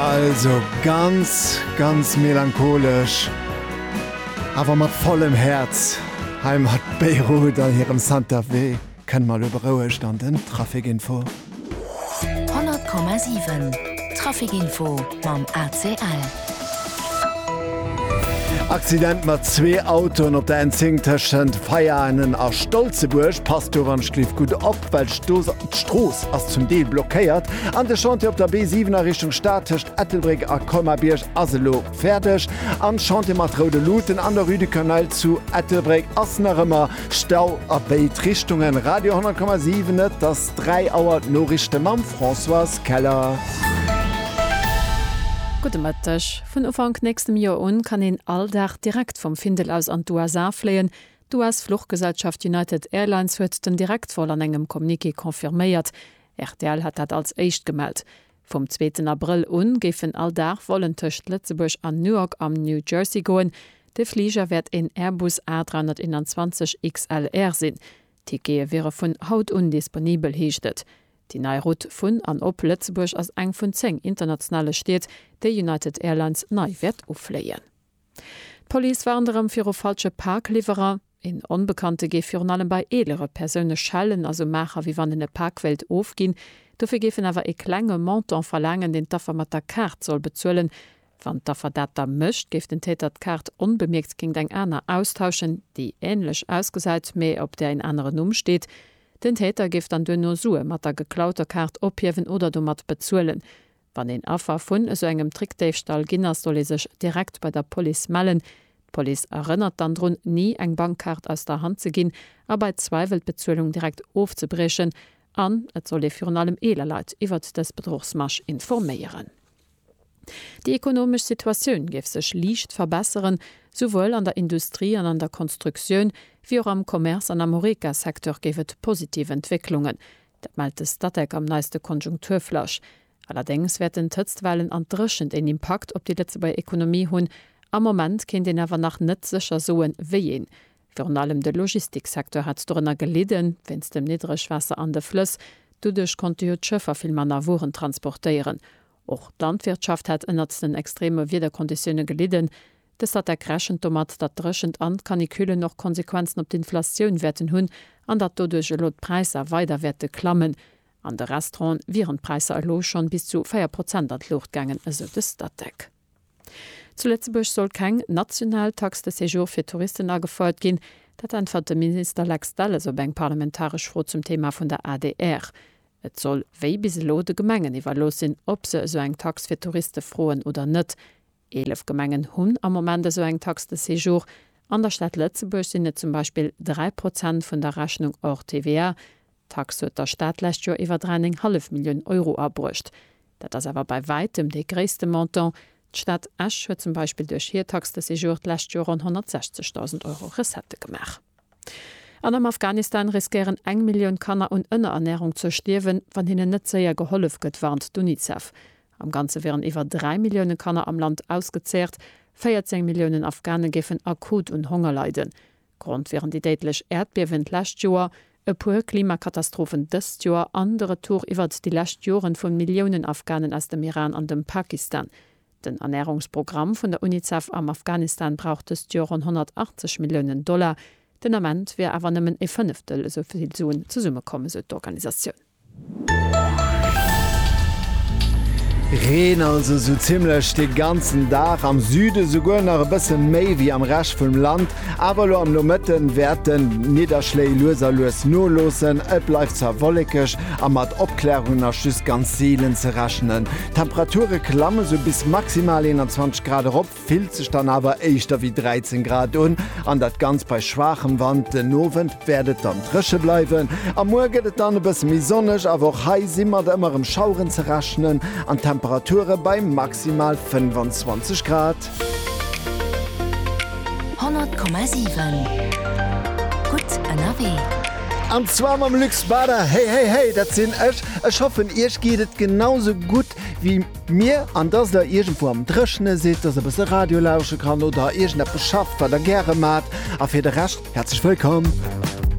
Also ganz, ganz melancholesch, awer mat vollem Häerz hei mat Beirut an hirem Santa Fe kënne mer elo berouegt an den Trafic Info. 100,7 Trafic Info mam ACL. Accident mat zwee Autoen op der N10 tëschent Veianen a Stolzebuerg. Passt doranst leeft gutt op. Well d'Stos d'Strooss ass zum Deel blockéiert an de Chantier op der B7 a Richtung Stad tëscht Ettelbréck a Colmar-Bierg ass elo fäerdeg. An d'Chantier mat Roude Luuten an der Rue du Cannel zu Ettelbréck ass nach ëmmer Stau a béid Richtungen. Radio 100,7 Et ass 3 Auer, d'Noriichte mam Françoise Keller. Gudde Mëtteg. Vun Ufank nächstem Joer un kann een all Dag direkt vum Findel aus an d'USA fléien, D'US-Fluchgesellschaft United Airlines huet den Direktvol an engem Communiqué confirméiert. Rtl hat dat als éischt gemellt. Vum zweeten Abrëll un géifen all Dag Vollen tëscht Lëtzebuerg an Newark am New Jersey goen. De Fliger wäert een Airbus A321 XLR sinn. D'Tickete wiere vun haut un disponibel, heescht et. Déi nei Route vun an op Lëtzebuerg ass eng vun 10 internationale Stied, déi United Airlines nei wäert ufléien. D'Police warnt erëm viru falsche Parkliwwerer. Een Onbekannte géif virun allem bei eelere Persoune schellen a sou maacher, wéi wann en e Pak wéilt ofginn. Dofir géif en awer e klenge Montant verlaangen, deen d'Affer mat der Kaart soll bezuelen. Wann d'Affer dat da mécht, géif den Täter d'Kaart onbemierkt géingt eng aner austauschen, déi änlech ausgesäit, mee op där een anere Numm steet. Den Täter géif dann duerno Sue mat der geklauter Kaart ophiewen oder domat bezuelen. Wann een Affer vun esou engem Trickdéifstall ginn ass, soll ee sech direkt bei der Police mellen. D'Police erënnert dann drun, ni eng Bankkaart aus der Hand ze ginn a bei Zweiwel d'Bezuelung direkt ofzebriechen. An et soll ee virun allem eeler Leit iwwert dës Bedruchsmasch informéieren. Déi ekonomesch Situatioun géif sech liicht verbesseren, souwuel an der Industrie an an der Konstruktioun, wéi och am Commerce an am Horeca-Secteur géif et positiv Entwécklungen, Dat mellt de Statec am neiste Konjunkturflash. Allerdéngs wäerten d'Hëtztwellen an d'Dréchent een Impakt op déi Lëtzebuerger Ekonomie hunn. Am Moment kéint een awer nach net sécher soen, wéi een. Virun allem de Logistiksecteur hat dorënner gelidden, wéinst dem Niddregwaasser an de Flëss. Doduerch konnte jo d'Schëffer vill manner Wueren transportéieren. Och d'Landwirtschaft hat ënnert den extreme Wiederkonditioune gelidden. De Statec rechent domat, datt d'Dréchent an d'Canicullen och Konsequenzen op d'Inflatioun wäerten hunn an datt doduerch elo d'Präisser weider wäerte klammen. An de Restauranten wieren d'Präisser elo schonn bis zu 4 Prozent an d'Luucht gaangen, esou de Statec. Zu Lëtzebuerg soll keng national Taxe de séjour fir Touristen agefouert ginn. Dat äntwert de Minister Lex Delles op eng parlamentaresch Fro zum Thema vun der adr. Et soll wéi bis elo de Gemengen iwwerlooss sinn, ob se esou eng Tax fir Touriste froen oder net. Eelef Gemengen hunn am Moment esou eng Taxe de séjour. An der Stad Lëtzebuerg sinn et zum Beispill 3 Prozent vun der Rechnung hors TVA. D'Taxe huet der Stad d'lescht Joer iwwer 3,5 Millioun Euro abruecht. Dat ass awer bei wäitem dee gréisste Montant. D'Stad Esch huet zum Beispill duerch hir Taxe de séjour d'lescht Joer ronn 160.000 Euro Recettë gemaach. An am Afghanistan riskéieren eng Millioun Kanner un Ënnerernärung ze stierwen, wann hinnen net séier gehollef gëtt, warnt d'Unicef. Am Ganze wieren iwwer 3 Millioune Kanner am Land ausgezehrt, 14 Milliounen Afghane géifen akut un Honger leiden. Grond wieren déi déidlech Äerdbiewen d'lescht Joer, e puer Klimakatastrophen dëst Joer an de Retour iwwert déi lescht Joren vu Milliounen Afghanen aus dem Iran an dem Pakistan. Den Ernärungsprogramm vun der Unicef am Afghanistan brauch dëst Joer ronn 180 Milliounen Dollar. Den Ament wier awer nëmmen ee Fënneftel esou vill Suen zesummekomm, esou d'Organisatioun. Reen also esou zimmlech de ganzen Dag, am Süde souguer nach e bësse méi wéi am Rescht vum Land. Awer elo am Nomëtte wäerte Nidderschléi lues a lues noloossen, et bleift zwar wollekeg a mat Opklärungen ass just ganz seelen ze rechnen. D'Temperature klamme sou bis maximal 21 Grad erop. fillt sech dann awer éischter wéi 13 Grad un an dat Ganzt bei schwaachem Wand. Den Owend wäert et dann dréche bleiwen a muer gëtt et dann e bësse méi sonneg, awer och hei si mat ëmmer erëm Schaueren ze rechnen an d'Temperature bei maximal 25 Grad. 100,7 gutt ënnerwee. An zwar mam Luc Spada. Hey hey hey, dat sinn ech. Ech hoffen iech geet et genau sou gutt wéi. Mir, an dass der iergendwou am Dréchene sidd, dass der e bësse Radio lausche kann oder iergendeppes schafft, wat der gäre maacht. A fir de Rescht, häerzlech wëllkomm!